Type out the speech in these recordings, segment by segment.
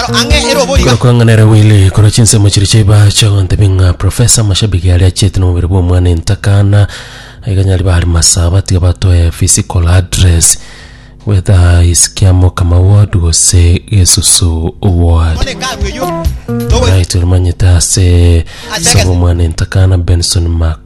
aro ang'e ere obo iga. Korokwanganera Willy korwa chinsemo chiria chia Ibache ogotebia ng'a Professor Mashabiki aria achiete nomobere bwa omwana entakana iga nyari bari masaba tiga batoe physical address whether is Kiamo Kamau ward gose Gesusu ward. One karu eyio. Togo Right, oromanyete ase Asege- sabo omwana entakana Benson Mak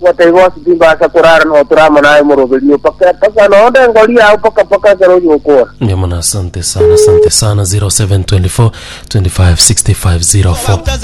Gwataiga ase timbaasa korara nao tore amo naye omoroberio, mpaka mpaka nonde engori yao mpaka mpaka ekero oyio okora. Ndio maana asante sana, asante sana 0724 25 65 04.